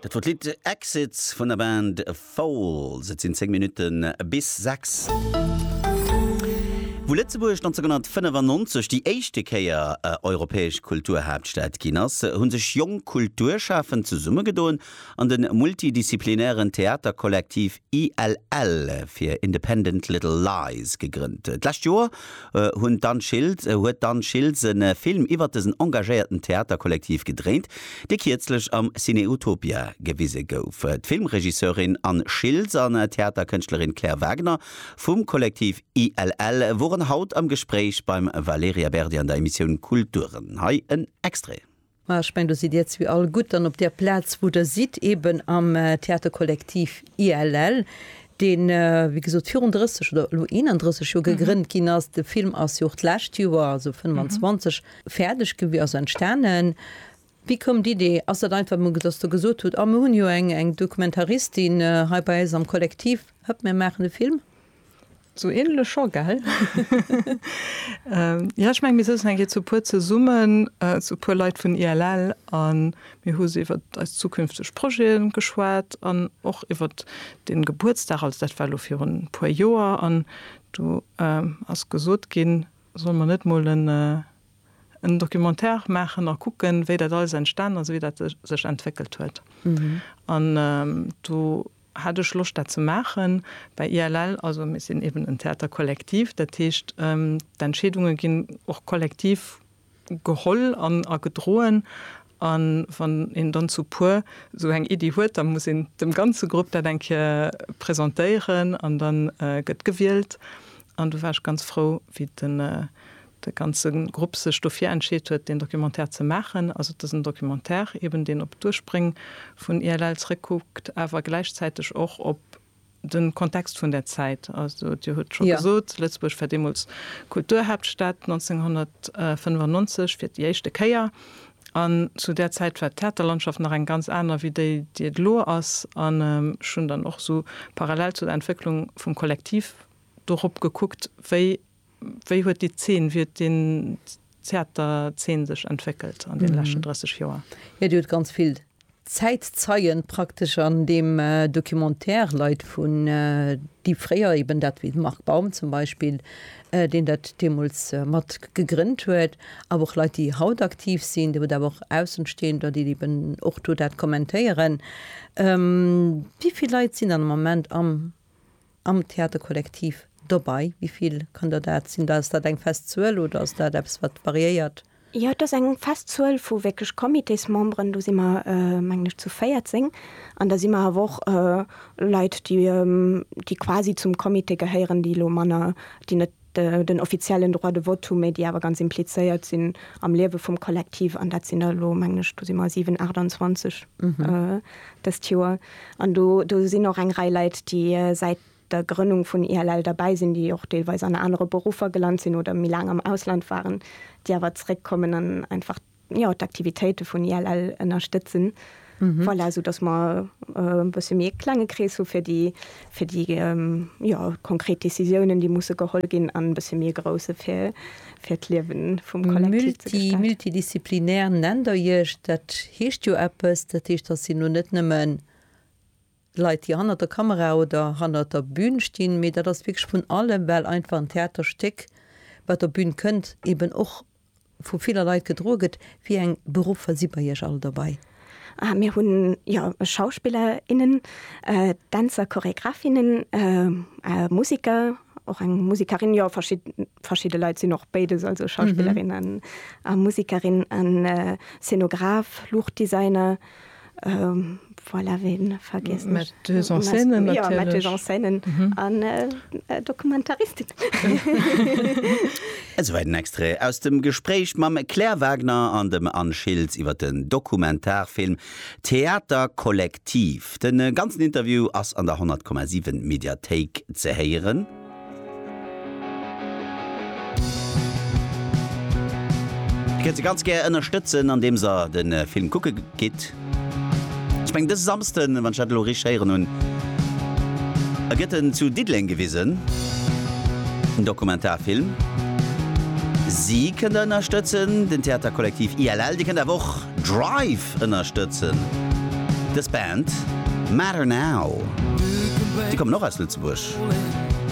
Dat wor d'Lidd Exit vun der Band Foals. Et sinn 10 Minutten bis 6. Wou Lëtzebuerg 1995 déi éischte Kéier europäesch Kulturhaaptstad ginn ass, hu sech jonk Kulturschafend zesummegedoen an de multidisziplinären Theaterkollektiv ILL fir Independent Little Lies gegrënnt. D'lescht Joer hunn d'Anne Schiltz huet d'Anne Schiltz e Film iwwert dësen engagéierten Theaterkollektiv gedréint, dee kierzlech am Ciné Utopia gewise gouf. D'Filmregisseurin Anne Schiltz an d'Theaterkënschtlerin Claire Wagner vum Kollektiv ILL woren haut am Gespréich beim Valerija Berdi an der Emissioun Kulturen. Hei en Extrait. Mä ech mengen, do sidd Dir zwee all gutt dann op där Plaz, wou Der sidd, eeben am Theaterkollektiv ILL, dee wéi gesot virun 30 oder elo 31 Joer gegrënnt ginn ass. De Film ass jo och d'lescht Joer, also 25, fäerdeg gewi-, also entstanen. Wéi koum d'Idee? Ass dat einfach mol, dass Der gesot hutt, A mir hunn jo eng Dokumentaristin hei bei eis am Kollektiv, hëpp, mir maachen e Film? Sou ähnlech scho, gell? Jo, ech meng mir sëtzen eng Kéier zu puer zesummen, zu puer Leit vun ILL, a mir hu se iwwert eis zukünfteg Projete geschwat an och iwwert dee Gebuertsdag. Also dat war elo virun e puer Joer an do ass gesot ginn, solle mer net mol en Documentaire maachen a kucken, wéi dat alles entstan ass, wéi dat sech entwéckelt huet. An do Hat ech Loscht dat ze maachen. Bei ILL, also mir sinn eben en Theater collectif, dat heescht d'Entscheedunge ginn och kollektiv geholl a gedroen. A wann een dann zu puer esou eng Iddi huet, da muss een dem ganze Grupp dat eng Kéier presentéieren an da gëtt gewielt. An do war ech ganz frou, wéi den de ganze Grupp sech dofir entscheet huet, deen Documentaire ze maachen. Also, et ass en Documentaire eben, deen op d'Urspréng vun ILL zréckkuckt, awer gläichzäiteg och op de Kontext vun där Zäit. Also, Dir hutt scho gesot, Lëtzebuerg war deemools Kulturhaaptstad, 1995 fir déi éischte Kéier. An zu där Zäit war d'Theaterlandschaft nach eng ganz aner wéi déi, déi et elo ass. An ech hunn dann och esou parallel zu der Entwécklung vum Kollektiv dorop gekuckt, wéi. Wéi huet déi Zeen, wéi huet den Theaterzeen sech entwéckelt an deene leschten 30 Joer? Jo, Dir hutt ganz vill Zäitzeien praktesch an deem Documentaire, Leit vun, déi fréier eben dat, wéi de Marc Baum zum Beispill, deen dat deemools mat gegrënnt huet, awer och Leit, déi haut aktiv sinn. Dir hutt awer och Aussenstehender, déi eben och do dat kommentéieren. Wéi vill Leit sinn dann am Moment am am Theaterkollektiv dobei? Wéi vill kann der dat sinn? Ass dat eng fest Zuel oder ass dat eppes, wat variéiert? Jo, et ass eng fest Zuel vu wierklech Comitésmemberen. Do si mer, mengen ech, zu 14. An da si mer awer och Leit, déi quasi zum Comité gehéieren, déi elo manner, déi net Den offiziellen Droit de vote hu méi, déi awer ganz implizéiert sinn am Liewe vum Kollektiv. An dat sinn der elo, mengen ech, do si mer 7, 28 dëst Joer. An do sinn och eng Rei Leit, déi säit der Grënnung vun ILL derbäi sinn, déi och deelweis an anere Beruffer gelant sinn oder méi laang am Ausland waren, déi awer zeréckkommen an einfach, jo d'Aktivitéite vun ILL ënnerstëtzen. Voilà, soudass mer e bësse méi e klenge Krees hu fir déi, fir déi jo konkret Décisiounen, déi musse geholl ginn, an e bësse méi e grousse fir, fir d'Liewe vum Kollektiv ze gestalten. Multidisziplinär nennt Der Iech. Dat heescht jo eppes. Dat heescht, datt Dir lo net nëmmen Leit déi hannert der Kamera oder hannert der Bün stinn, mee dat ass wierklech vun allem, well einfach en Theaterstéck wat op Bün kënnt eben och vu viller Leit gedroe gëtt. Wéi eng Beruffer si bei Iech all dobei? Ah mir hunn jo Schauspiller, innen, Dänzer, Choregraph, innen, Musiker, och eng Musikerin, jo verschidde Leit sinn och béides, also Schauspillerin a Musikerin, an Szenograph, Luuchtdesigner. Um, voilà, ween vergiessen ech? Metteuse en scène natierlech. Jo, Metteuse en scène an Dokumentaristin. Esouwäit en Extrait aus dem Gespréich mam Claire Wagner an dem Anne Schiltz iwwer den Dokumentarfilm Theater Kollektiv. De ganzen Interview ass an der 100,7 Mediathéik ze héieren. Dir kënnt se ganz gär ënnerstëtzen an deems der de Film kucke gitt. Ech mengen dëse Samsden, wann ech dat elo richteg héieren hunn, gëtt en zu Diddeleng gewisen, den Dokumentarfilm. Si kënnt der ënnerstëtzen, den Theaterkollektiv ILL. Dir kënnt awer och Drive ënnerstëtzen, dës Band Matter Now. Si kommen och aus Lëtzebuerg.